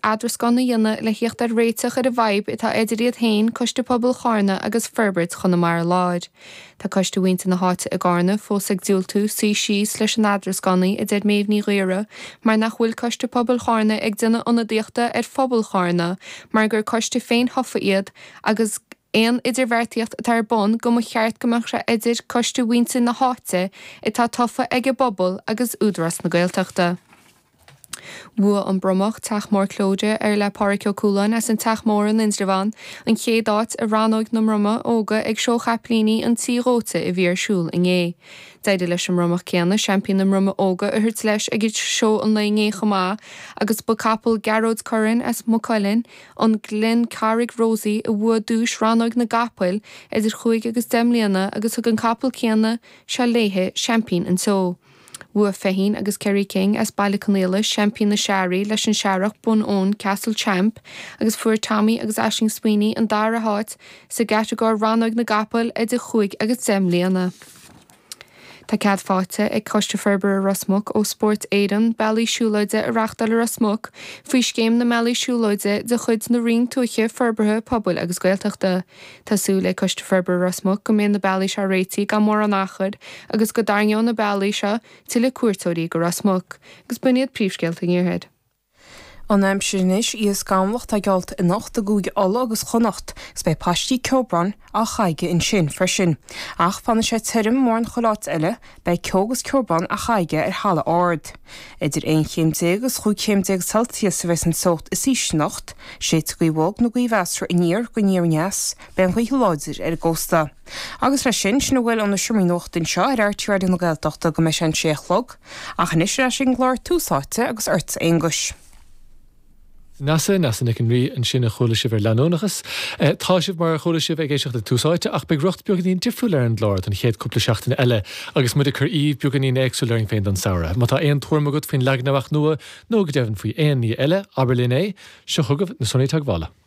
eadarascán a dhéanamh le theacht ar réiteach ar an bhfadhb atá eidir iad féin, Coiste Pobail Chárna agus Forbairt Chonamara Láir. Tá Coiste Mhuintir na hÁite i gCárna fós ag diúltú suí síos leis an eadarascánaí, a deir Méabh Ní Ghaora, mar nach bhfuil Coiste Pobail Chárna ag déanamh ionadaíochta ar phobal Chárna mar gur coiste féin-thofa iad agus aon idirbheartaíocht atá ar bun go mba cheart go mbeadh sé eidir Coiste Mhuintir na hÁite atá tofa ag an bpobal agus Údarás na Gaeltachta. Bhuaigh an Bromach, Teach Mór Clyde, ar le Pádraig Ó Cualáin as an Teach Mór in Indreabhán, an chéad áit i rannóg na mbromach óga ag Seó Chapaillíní an Tí Dhóite a bhí ar siúl inné. D'éirigh leis an mbromach céanna seaimpín na mbromach óga a thabhairt leis ag seó an lae inné chomh maith agus ba capall Gearóid Curran as Maigh Cuilinn, An Gleann Carraigh Rosie, a bhuaigh duais rannóg na gcapall idir chúig agus deich mbliana agus thug an capall céanna seo léi seaimpín an tseó. Bhuaigh Feichín agus Kerry King as Baile Conaola Seaimpín na Searrach leis an searrach Bunowen Castle Champ agus fuair Tommy agus Aisling Sweeney an dara háit sa gcatagóir Rannóg na gCapall idir chúig agus deich mbliana. Tá cead faighte ag Coiste Forbartha Ros Muc ó Spórt Éireann bealaí siúlóide a reáchtáil i Ros Muc faoi Scéim na mBealaí Siúlóide de chuid na Roinne Tuaithe, Forbartha Pobail agus Gaeltachta. Tá súil ag Coiste Forbartha Ros Muc go mbeidh na bealaí seo réitigh gan mórán achair agus go dtarraingeoidh na bealaí seo tuilleadh cuairteoirí go Ros Muc agus b'in iad príomhscéalta an Iarthair. An aimsir anois, Beidh sé scamallach i gcoitinne anocht i gCúige Uladh agus Chonnacht agus beidh paistí ceobráin á chaitheamh ansin freisin. Ach fanfaidh sé tirim, mórán chuile áit eile, Beidh ceo agus ceobrán á chaitheamh ar thalamh ard. Idir aon chéim déag agus chúig chéim déag Celsius a bheidh an teocht is ísle anocht. Séidfidh gaoth bhog nó gaoth mheasartha aniar go aniar-aneas. Beidh an ghaoth láidir ar an gcósta. Agus leis sin, sin a bhfuil ó na seomraí nuachta anseo ar RTÉ Raidió na Gaeltachta go mbeidh sé an sé a chlog. Ach anois ar ais ag an gclár Tús Áite agus ortsa Aonghus. Neasa, Neasa Nic an Rí, ansin a chuala sibh ar leanúnachas. Tá sibh, mar a chuala sibh, ag éisteacht le Tús Áite ach beidh riocht beagáinín difriúil ar an gclár don chéad cúpla seachtaine eile agus muid ag cur éide beagáinín éagsúil orainn féin don samhradh. Má tá aon tuairim agat faoin leagan amach nua nó go deimhin faoi aon ní eile, abair linn é. Seo chugaibh na sonraí teagmhála.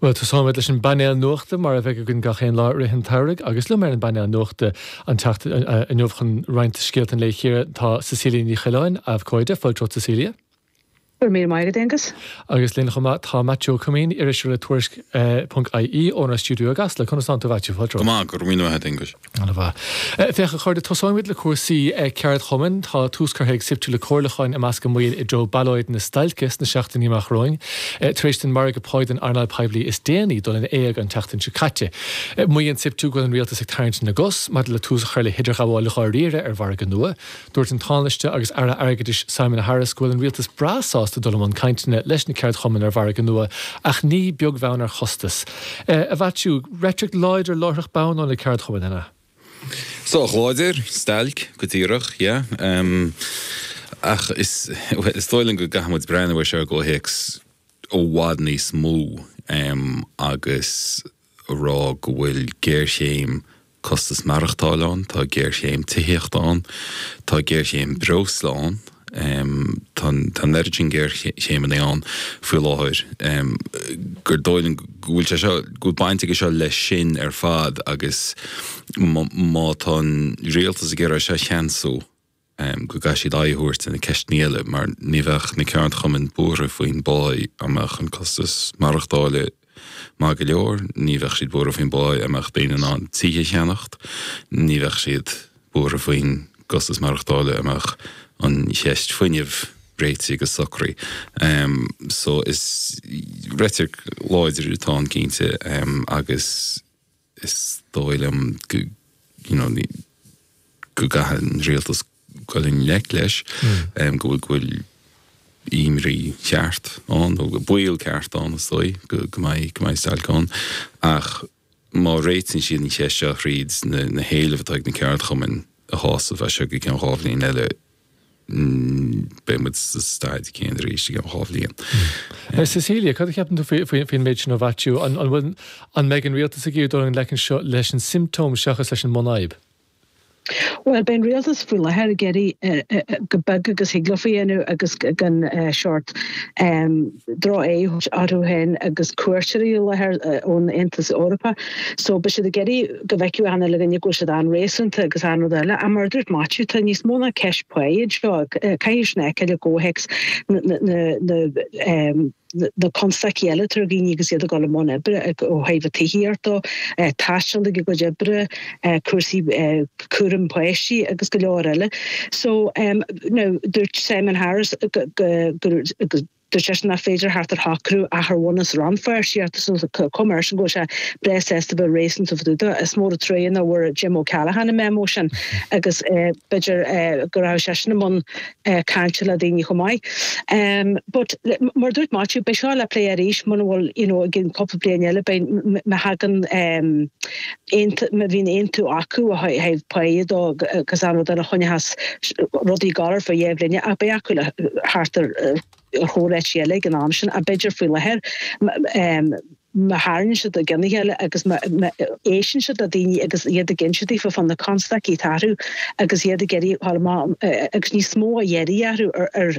Bhuel, tosóimid leis an bpainéal nuachta, mar a bheidh againn gach aon lá i rith an tsamhraidh. Agus liom ar an bpainéal nuachta an tseachtain inniu chun roinnt scéalta an lae a chíoradh, tá Cecilia Ní Choileáin, abhcóide. Fáilte romhat Cecilia. Go raibh míle maith agat, Aonghus. Agus linn chomh maith, tá Maitiú Ó Coimín, iriseoir le Tuairisc ponc ie, ónár stiúideo i gCasla. Conas atá tú, a Mhaitiú? Fáilte romhat. Go maith. Go raibh míle maith agat, Aengus. An-mhaith. Féach a chairde, tosóimid le cúrsaí ceardchumainn. Tá tús curtha ag Siptu le comhairliúcháin i measc a mbaill i dtreo ballóid stailce sna seachtainí amach romhainn, tar éis don mhargadh pá don earnáil poiblí is déanaí dul in éag an tseachtain seo caite. Maíonn Siptu go bhfuil an rialtas ag tarraingt na gcos maidir le tús a chur le hidirghabháil dháiríre ar mhargadh nua. Dúirt an Tánaiste agus Aire Airgeadais Simon Harris go bhfuil an Rialtas breá sásta dul i mbun cainteanna leis na ceardchumainn ar mhargadh nua ach ní beag bheann ar chostas a Mhaitiú. Reitric láidir láithreach bonn ó na ceardchumainn, an ea? Sách láidir, stailc, go díreach, yeah. Ach is dóigh liom go gcaithfidh muid breathnú ar seo i gcomhthéacs i bhfad níos mó agus a rá go bhfuil géarchéim costas maireachtáil ann, tá géarchéim tithíochta ann, tá géarchéim breosla ann, tá an oiread sin géarchéimeanna ann faoi láthair gur dóigh liom go bhfuil sé seo, go bhfuil baint aige seo leis sin ar fad agus má tá an rialtas ag iarraidh é seo a cheansú, go gcaithfidh siad aghaidh a thabhairt ar na ceisteanna eile mar ní bheadh na ceardchumainn buartha faoin bpáí dá mbeadh an costas maireachtála maith go leor, ní bheadh siad buartha faoin bpáí dá mbeadh daoine in ann tithe a cheannacht, ní bheadh siad buartha faoin gcostas maireachtála dá mbeadh an cheist fuinnimh réitithe agus socraithe. So is reitric láidir atá ann cinnte agus. is dóigh liom go you know go gcaithfidh an rialtas dul i ngleic leis em go bhfuil go bhfuil imní cheart ann nó go baol ceart ann is dóigh go go mbeidh go mbeidh stailc ann ach má réitíonn siad an cheist seo thríd na na héilimh atá ag na ceardchumainn a shásamh as seo go ceann dhá bhliain eile beidh muid sa staid céanna arís i gceann dhá bhliain. Cecilia, cad a cheapann tú faoin méid sin ó Mhaitiú? An bhfuil, an mbeidh an rialtas ag iarraidh dul i ngleic anseo leis an siomptóm seachas leis an mbunfhadhb? Bhuel, beidh an rialtas faoi láthair ag iarraidh chomh beag agus a thig leo a dhéanamh agus gan sórt. drochaird orthu féin agus cuairteoirí i láthair ón Aontas Eorpach so beidh siad ag iarraidh go bhfeicfeadh achan duine againn go bhfuil siad an-réasúnta agus aon rud eile ach mar a dúirt Maitiú tá níos mó ná ceist pá anseo caithfear sin a fheiceáil i gcomhthéacs na na constaicí eile atá ar dhaoine agus iad ag dul i mbun oibre ó thaobh tithíocht dó, taisteal ag a gcuid oibre, cúrsaí cúraim páistí agus go leor eile. So now dúirt Simon Harris dúirt seisean nach féidir theacht ar shocrú ach ar bhunús rannpháirtíocht chomh maith le sin go bhfuil sé breá sásta a bheith réasúnta fá dtaobh de. Is mór an trua nach bhfuair Jim O'Callaghan an memo sin agus b'fhéidir go raibh seisean i mbun cainte le daoine chomh maith. But mar a dúirt Maitiú beidh seo le plé arís mura bhfuil you know i gceann cúpla bliain eile beidh má thagann aontaithe, má bhíonn aontú acu ó thaobh pá dó agus an rud eile a choinneodh as rudaí galair faoi dheifir eile ach beidh acu le thart ar thóir eití eile ag an am sin a b'fhéidir faoi láthair. Má tharraingeann siad a gcinn le chéile agus má éisteann siad le daoine agus iad ag insint dóibh fá na constaicí atá orthu agus iad ag iarraidh, tharla maith, agus níos mó á iarraidh orthu ar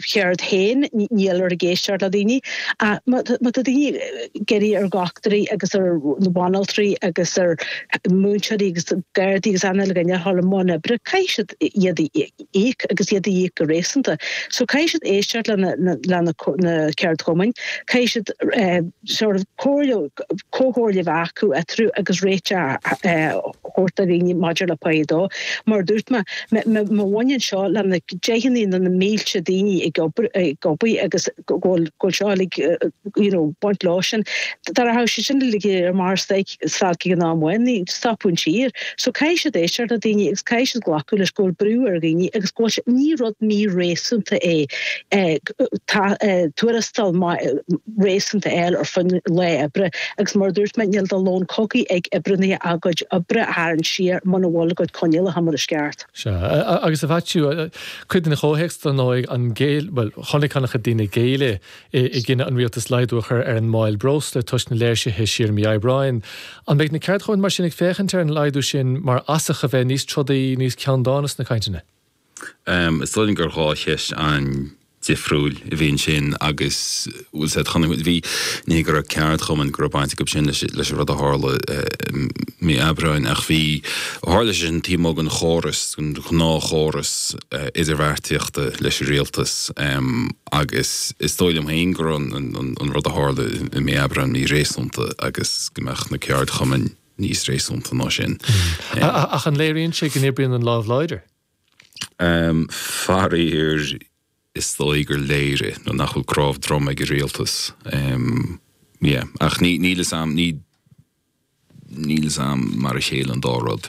cheird féin, níltear ag éisteacht le daoine. Ach má tá daoine ag iarraidh ar dhochtúirí agus ar bhanaltraí agus ar mhúinteoirí agus Gardaí agus an uile dhuine a ghabháil i mbun oibre, caithfidh siad iad a íoc agus iad a íoc go réasúnta. So caithfidh siad éisteacht le na ceardchumainn, caithfidh siad sort of comhairle, comhairle a bheith acu eatarthu agus réiteach a thabhairt do dhaoine maidir le pá dó. Mar a dúirt mé, má bhaineann seo le na deicheanna nó na mílte daoine ag obair, ag obaí agus go bhfuil, go bhfuil seo uilig, you know, baint leo sin, dá rachadh siad sin uilig ar mar stailc, stailc ag an am amháin, stopfadh an tír. So caithfidh siad éisteacht le daoine agus caithfidh siad glacadh leis go bhfuil brú ar dhaoine agus go bhfuil sé, ní rud mí-réasúnta é tuarastal maith, réasúnta a fháil ar son lá oibre. Agus mar a dúirt mé, níl de lón cogaidh ag oibrithe ach a gcuid oibre a tharraingt siar muna bhfuil a gcuid coinníollacha mar is ceart. Sea. Agus a Mhaitiú, cuid den chomhthéacs, dar ndóigh, an, bhuel, chonaic an-chuid daoine géilleadh i gcinneadh an Rialtais laghdú a chur ar an máil breosla toisc na léirsithe siar mí Aibreáin. An mbeidh na ceardchumainn mar sin ag féachaint ar an laghdú sin mar fhasach a bheith níos trodaí, níos ceanndána sna cainteanna? Is dóigh liom gur dhá cheist an-difriúil a bhí ansin agus bhfuil sé chun a bhí ní go raibh ceardchumainn go raibh baint acu sin leis leis an rud a tharla mí Aibreáin ach bhí tharla sé sin taobh amuigh den chóras den ghnáthchóras idirbheartaíochta leis an rialtas agus is dóigh liom féin go raibh an rud a tharla i mí Aibreáin mí-réasúnta agus go mbeadh na ceardchumainn níos réasúnta ná sin. Ach an léiríonn sé go n-oibríonn an lámh láidir? Faraor, is dóigh gur léirigh nó nach bhfuil cnámh droma ag an rialtas. Ach níl a fhios agam, níl a fhios agam mar a chéile an dá rud.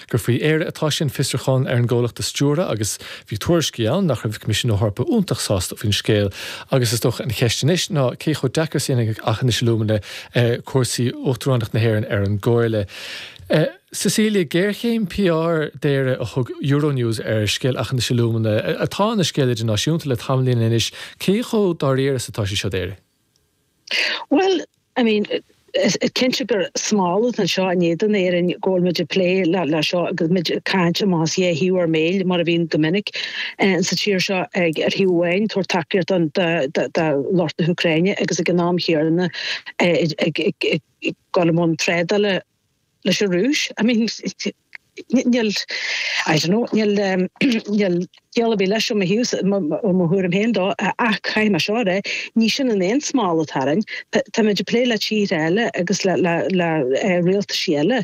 gur faoi Éire atá sé an fiosrúchán ar an gcomhlacht a stiúradh agus bhí tuairiscí ann nach raibh Coimisiún na hEorpa iontach sásta faoin scéal agus is dócha an cheist anois ná cé chomh deacair is a dhéanfaidh Aughinish Alumina cúrsaí Uachtaránacht na hÉireann ar an gComhairle. Cecilia, géarchéim PR d'Éirinn a thug Euronews ar scéal Aughinish Alumina atá ina scéal idirnáisiúnta le tamaillín anois, cé chomh dáiríre is atá sé seo d'Éirinn? Bhuel, I mean, is cinnte gur smál atá ann seo in éadan Éirinn go bhfuil muid ag plé le seo agus muid ag caint amach as dhá thaobh ar mbéil mar a bhíonn go minic sa tír seo ag ar thaobh amháin ag tabhairt tacaíocht don do lucht na hÚcráine agus ag an am chéanna ag ag ag ag dul i mbun trádála leis an Rúis. I mean, níl, I don't know, níl, níl ciall ar bith leis ó mo thaobhsa, ó mo thuairim féin de, ach caithfidh mé seo a rá, ní sin an aon smál atá orainn. Táimid ag plé le tíortha eile agus le, le, le rialtaisí eile.